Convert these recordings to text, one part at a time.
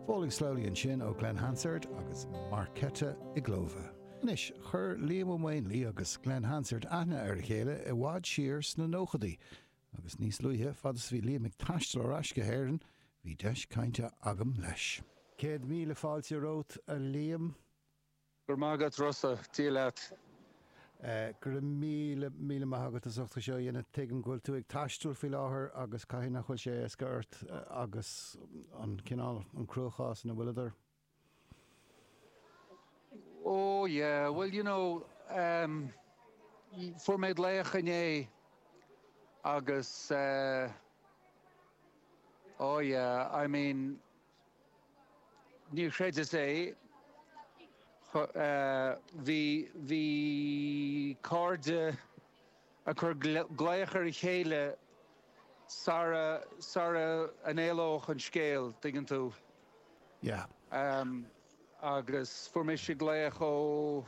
Falling Slowly ansin ó Glen Hansard agus Markéta Irglová. Anois, chuir Liam Ó Maonlaí agus Glen Hansard aithne ar a chéile i bhfad siar sna nóchadaí, agus níos luaithe, fad is a bhí Liam ag taisteal ar ais go hÉirinn, bhí deis cainte agam leis. Céad míle fáilte romhat, a Liam. Go raibh maith agat Rossa, Dia leat. Go raibh míle, míle maith agat as ucht é seo a dhéanamh. Tuigim go bhfuil tú ag taisteal faoi láthair agus caithfidh nach bhfuil sé éasca ort agus an cineál, an cruachás ina bhfuil tú. Ó, yeah, bhuel, you know, em, fuair mé glaoch inné agus eh, ó, yeah, I mean, Níor chreideas é. Bhí cairde ag cur glaoch ar a chéile sara n-éalódh an scéal, dtuigeann tú. Yeah. Agus fuair mise glaoch ó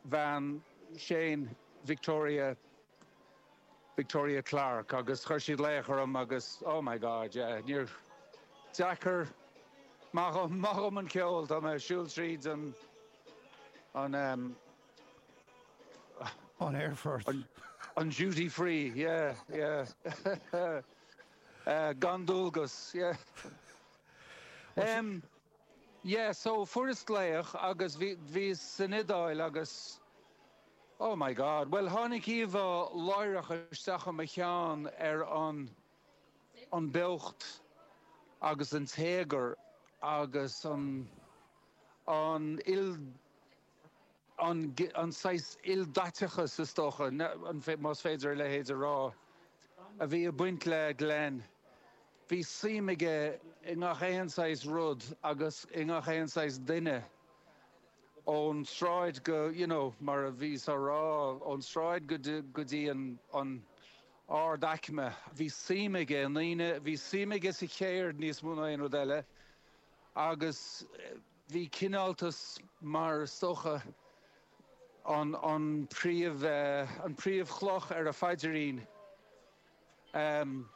bhean Shane, Victoria, Victoria Clarke, agus chuir sí glaoch orm agus oh my God, yeah, fíordheacair, maith dhom, maith dhom an ceol, tá mé a' siúl tríd an, an ehm, an aerfort, an, an duty free, yeah, yeah, eh, gan dualgas, yeah. Ehm, yeah, so fuaireas glaoch agus bhí, bhíos san Iodáil agus, Oh my God. Bhuel, tháinig íomhá láithreach isteach i mo cheann ar an an beocht agus an téagar agus an an an an saghas ildaiteachas, is dócha, más féidir a leithéid a rá, a bhí ag baint le Glen. Bhí suim aige i ngach aon saghas rud agus i ngach aon saghas duine. ón tsráid go, you know, mar a bhíothas á rá, ón tsráid go dtí, go dtí an, an, ardaicme. Bhí suim aige i ndaoine, bhí suim aige sa cheird níos mó ná aon rud eile agus bhí cineáltas mar is dócha an, an príomh, an príomhchloch ar a phaidirín. Ahem.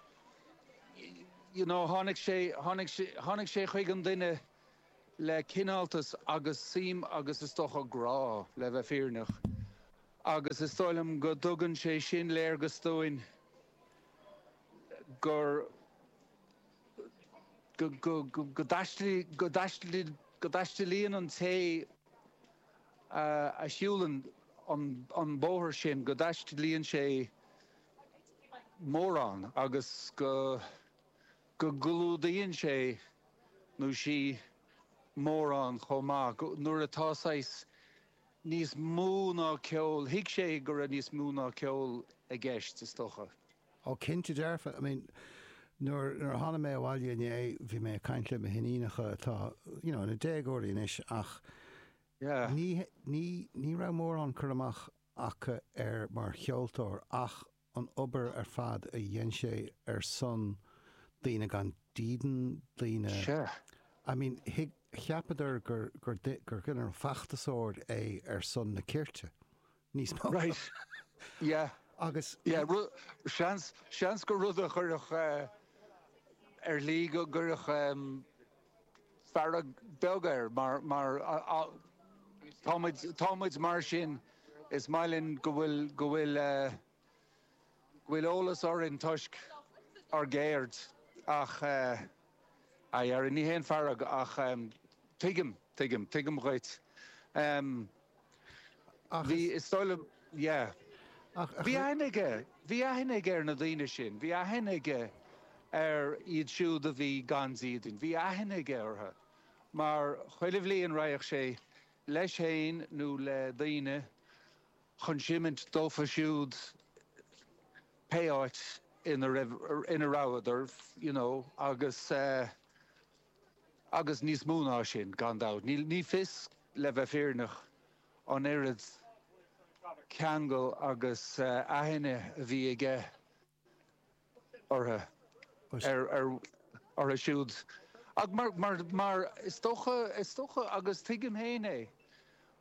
You know, tháinig sé, tháinig sé, tháinig sé chuig an duine le cineáltas agus suim agus is dócha grá, le bheith fírinneach, agus is dóigh liom go dtugann sé sin léargas dúinn gur, go dtaistealaíonn an té a shiúlann an bóthar sin, go dtaistealaíonn sé mórán agus go. go gclúdaíonn sé nó sí mórán chomh maith, go, nuair atá saghas níos mó ná ceol, thuig sé go raibh níos mó ná ceol i gceist, is dócha. Ó cinnte dearfa, I mean, nuair a tháinig mé abhaile inné, bhí mé ag caint le mo hiníonacha atá, you know, ina déagóirí anois ach Yeah. ní, ní, ní raibh mórán cur amach acu air mar cheoltóir ach an obair ar fad a dhein sé ar son daoine gan dídean, daoine, Sure. I mean, thuig, cheapadar gur, gur, gur ginearálta feachtasóir é ar son na cirte, níos mó. Right. Yeah. Agus. Yeah, ru, seans, seans gur rud a chuirfeadh eh, ar shlí go gcuirfeadh em, fearg bheag air, mar, mar a, a, tá muid, tá muid mar sin, is maith linn go bhfuil, go bhfuil, go bhfuil eolas orainn toisc ár gceird ach eh, ar deireadh, ní haon fearg ach em, tuigim, tuigim, tuigim dhuit. Em. Ach is. Bhí, is dóigh liom, yeah. Ach. Bhí aithne aige, bhí aithne aige ar na daoine sin, bhí aithne aige ar iad siúd a bhí gan dídean, bhí aithne aige orthu mar chuile bhliain raghadh sé leis féin nó le daoine chun seimint dófa siúd pé áit ina raibh, ina rabhadar, you know, agus eh, agus níos mó ná sin, gan dabht. Ní fios, le bheith fírinneach, an oiread ceangail agus aithne a bhí aige orthu, orthu siúd, ach mar is dócha, is dócha, agus tuigim féin é,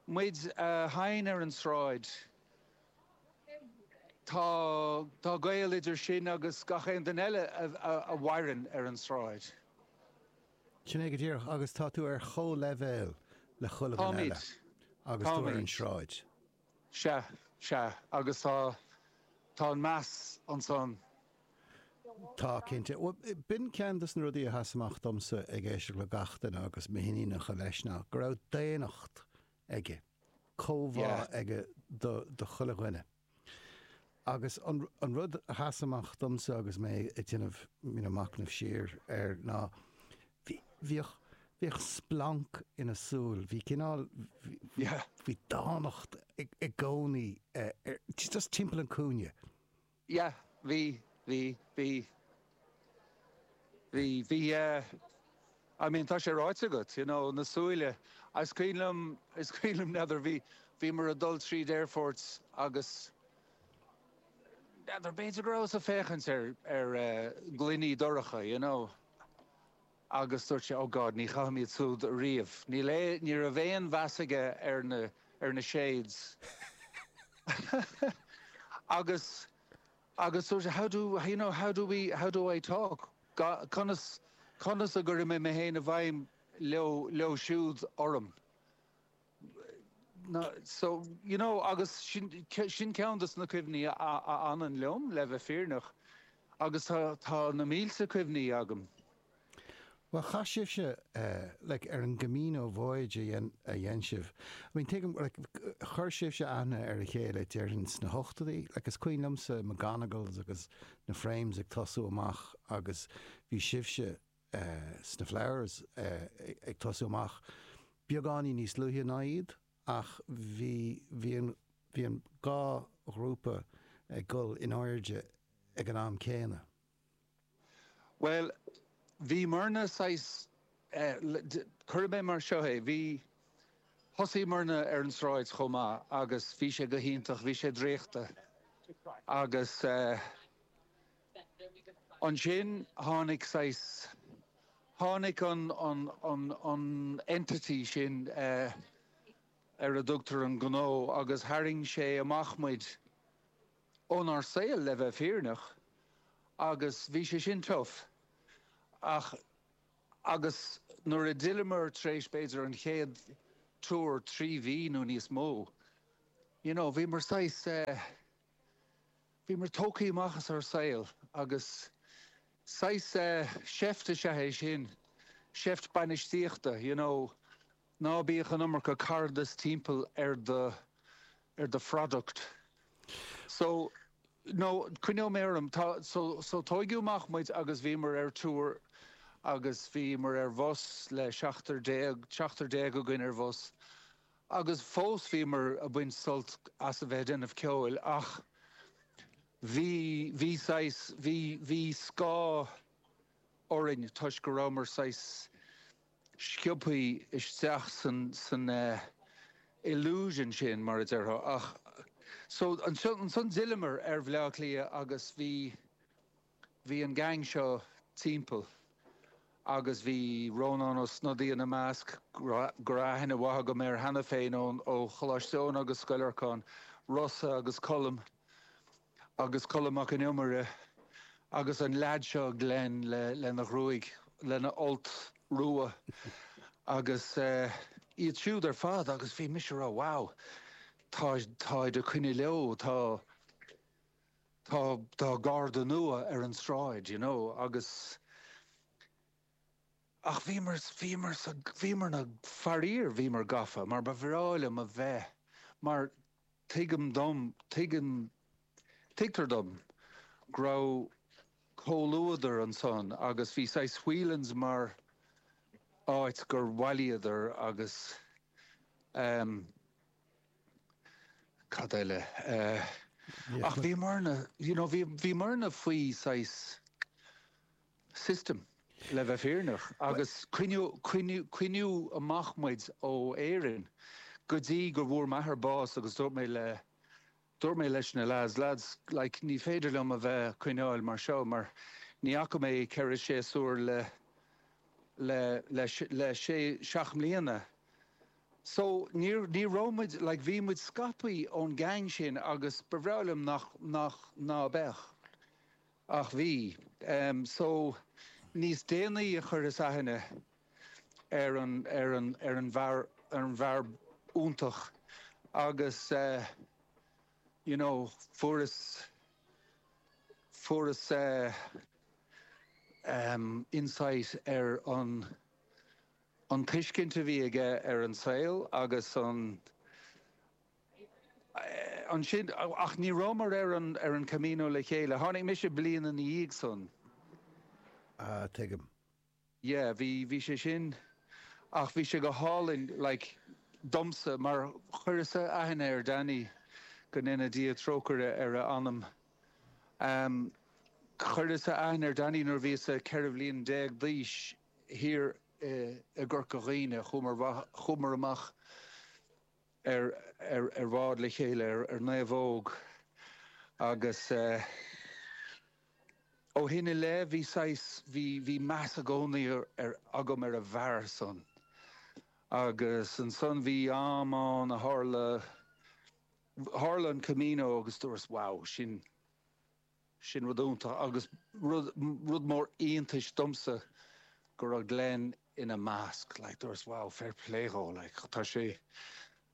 muid a sheinn ar an tsráid Tá tá gaol idir sin agus gach aon duine eile a mhaireann ar an tsráid. Sin é go díreach, agus tá tú ar chomhleibhéal le chuile dhuine eile Táimid, agus tú ar an táimid. tsráid. Sea, sea, agus tá, tá an meas ansan. Tá, cinnte. Bhuel, b'in ceann de na rudaí a sheas amach domsa ag éisteacht le gach duine agus m'iníonacha leis, ná go raibh daonnacht aige, comhbhá Yeah. aige do chuile dhuine. Agus an rud a sheas amach domsa agus mé ag déanamh, you know, machnamh siar air ná bhí, bhíodh, bhíodh splanc ina shúil, bhí cineál, Yeah. bhí dánacht i gcónaí just timpeall an cúinne. yeah bhí bhí bhí bhí bhí yeah I mean tá sé ráite agat you know na súile is cuimhin liom is cuimhin liom n'fheadar bhí bhí muid ag dul tríd aerfort agus n'fheadar b'fhéidir go rabhas ag féachaint ar ar eh gloiní dorcha you know. Agus dúirt sé, 'Ó God, ní chaithim iad súd riamh. Níl aon, ní raibh aon mheas aige ar na, ar na shades. Agus, agus dúirt sé, 'How do, you know, how do we, how do I talk? God, conas, conas a gcuirfidh mé mé féin i bhfeidhm leo siúd orm? So, you know, agus sin, sin ceann de na cuimhní a fhanann liom, le bheith fírinneach, agus tá, tá na mílte cuimhní agam. Bhuel, chaith sibhse, like, ar an gCamino voyage a dhein sibh, I mean, tuigim, like, chuir sibhse aithne ar a chéile, déarfainn, sna hochtóidí, like, is cuimhin liomsa McGonagalls agus na Frames ag tosú amach agus bhí sibhse, sna Flowers ag tosú amach. Beagáinín níos luaithe ná iad, ach bhí, bhí an, bhí an dhá ghrúpa ag gol in airde ag an am céanna. Bhuel, bhí muidne saghas, cuirfidh mé mar seo é, bhí, thosaigh muidne ar an tsráid chomh maith agus bhí sé go hiontach, bhí sé draíochta agus eh, Ansin tháinig saghas, tháinig an, an, an, an entity sin ar a dtugtar an gnó agus tharraing sé amach muid ónár saol, le bheith fírinneach, agus bhí sé sin tough. Ach, agus nuair a d'fhilleamar tar éis b'fhéidir an chéad triúr, trí mhí nó níos mó, you know, bhí muid saghas, eh, Bhí muid tógtha amach as ár saol agus saghas seift is ea é sin, seift bainistíochta, you know, ná bíodh an iomarca caradas timpeall ar do, ar do phroduct. So, no, coinneoidh mé orm, tá, so, so tóigeadh amach muid agus bhí muid ar tour agus bhí muid ar bhus le seachtar déag, seachtar déag againn ar bhus agus fós bhí muid ag baint sult as a bheith ag déanamh ceoil ach bhí, bhí saghas, bhí, bhí scáth orainn toisc go rabhamar saghas sciobthaí isteach san, san eh illusion sin mar a déarfá ach, so, ansan d'fhilleamar ar Bhleá Cliath agus bhí, Bhí an gang seo timpeall agus bhí Rónán Ó Snodaigh ina measc, go raibh aithne mhaith agam air cheana féin ó Choláiste Eoin agus Scoil Lorcáin, Rossa agus Colm agus Colm Mac Con Iomaire agus an lead seo Glen lena ghruaig, lena fholt rua agus iad siúd ar fad agus bhí mise a rá wow táid ag coinne leo, tá. tá tá garda nua ar an tsráid you know agus ach bhíomar bhíomar sa bhíomar na faraor bhíomar gafa mar ba bhreá liom a bheith mar tuigim dom tuigim tuigtear dom go raibh comhluadar ansan agus bhí saghas Whelan's mar áit gur bhailíodar agus ehm cad eile? Ach bhíomarna, you know, bhíomarna faoi saghas system, le bheith fírinneach, agus coinníodh amach muid ó Éirinn go dtí go bhfuair m'athair bás agus dúirt mé le, Dúirt mé leis na lads, Lads, like, ní féidir liom a bheith a' coinneáil mar seo, mar ní fhaca mé ceithre séasúr le, le, le, le sé, seacht mbliana. So, níor, ní raibh muid, like, bhí muid scaipthe ón gang sin agus ba bhreá liom nach, nach, ná beadh. Ach bhí. Em, so, níos déanaí a chuireas aithne ar an bhfear iontach agus you know fuaireas fuaireas insight ar an an tuiscint a bhí aige ar an saol agus an ansin ach ní rabhamar ar an ar an Camino le chéile, tháinig mise bliain ina dhiaidh san. Ah tuigim. yeah, bhí, bhí sé sin, ach bhí sé go hálainn, like, domsa, mar chuireas-sa aithne ar Danny, go ndéana Dia trócaire ar a anam, em, chuireas-sa aithne ar Danny nuair a bhíos-sa ceithre bliana déag d'aois, thiar i, i gCorca Dhuibhne, chuamair, chuamair amach, ar bhád le chéile ar naomhóg agus ó shin i leith bhí saghas, bhí, bhí meas i gcónaí ar, agam ar an bhfear san agus ansan bhí am ann a tharla, tharla an Camino agus dúras wow, sin. Sin rud iontach, agus rud mór iontais domsa go raibh Glen ina measc. Like dúras, wow, fair play dhó, like. Tá sé,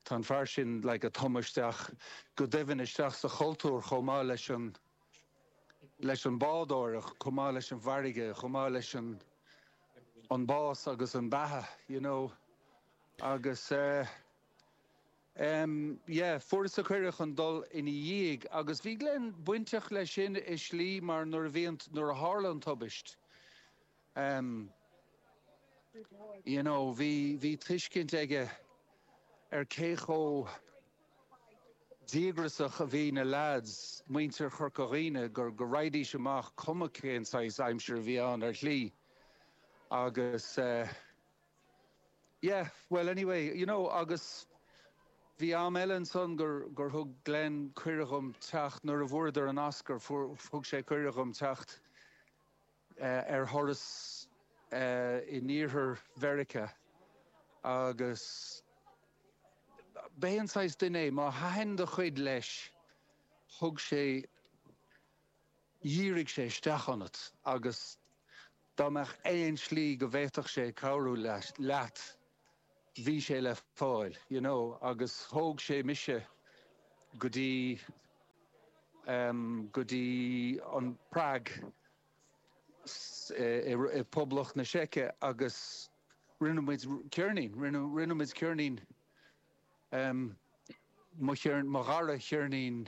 tá an fear sin like ag tumadh isteach go doimhin isteach sa chultúr chomh maith leis an, leis an bádóireacht, chomh maith leis an bhfarraige, chomh maith leis an, an bás agus an beatha, you know. Agus eh. Um, yeah, fuaireas an cuireadh chun dul ina dhiaidh agus bhí Glen bainteach leis sin i slí mar nuair a bhí an, nuair a tharla an tubaist, um, you know, bhí, bhí tuiscint aige ar cé chomh díograsach a bhí na lads, muintir Chorca Dhuibhne, gur, go raghaidís amach cuma cén saghas aimsir a bhí ann ar shlí agus, eh, Yeah, well anyway, you know, agus bhí am eile ansan gur, gur thug Glen cuireadh dhom teacht, nuair a fuaireadar an Oscar, fuair, thug sé cuireadh dhom teacht eh ar thuras eh in iarthar Mheiriceá agus b'é an saghas duine é, má thaitin do chuid leis, thug sé, dhírigh sé isteach ionat agus Dá mbeadh aon slí go bhféadfadh sé cabhrú leat, bhí sé le fáil, you know, agus thóg sé mise go dtí, em, go dtí an Prague i, i Poblacht na Seice agus rinneamar ceirnín, rinne, rinneamar ceirnín, em, mo cheirn, mo dhara cheirnín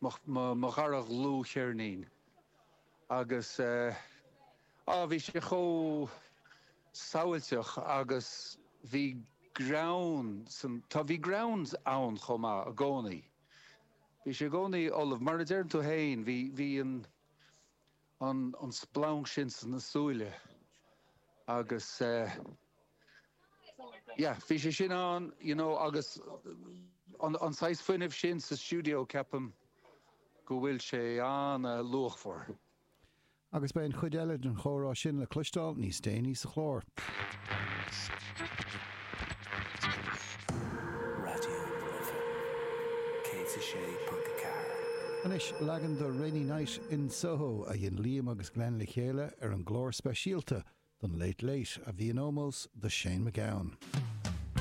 mo dhara dhlúthcheirnín agus á bhí sé chomh samhailteach agus bhí greann, sa tslí bhí greann ann chomh maith i gcónaí bhí sé i gcónaí ullamh mar a deireann tú féin bhí bhí an an splanc sin sna súile agus yeah bhí sé sin ann you know agus an saghas fuinnimh sin sa stiúideo ceapaim go bhfuil sé an-luachmhar. Agus beidh an chuid eile den chomhrá sin le cloisteáil níos déanaí sa chlár. Raidió na Life 106.4. Anois leagan de 'Rainy Night in Soho' a dhein Liam agus Glen le chéile ar an gclár speisialta don Late Late a bhí in ómós do Shane MacGowan.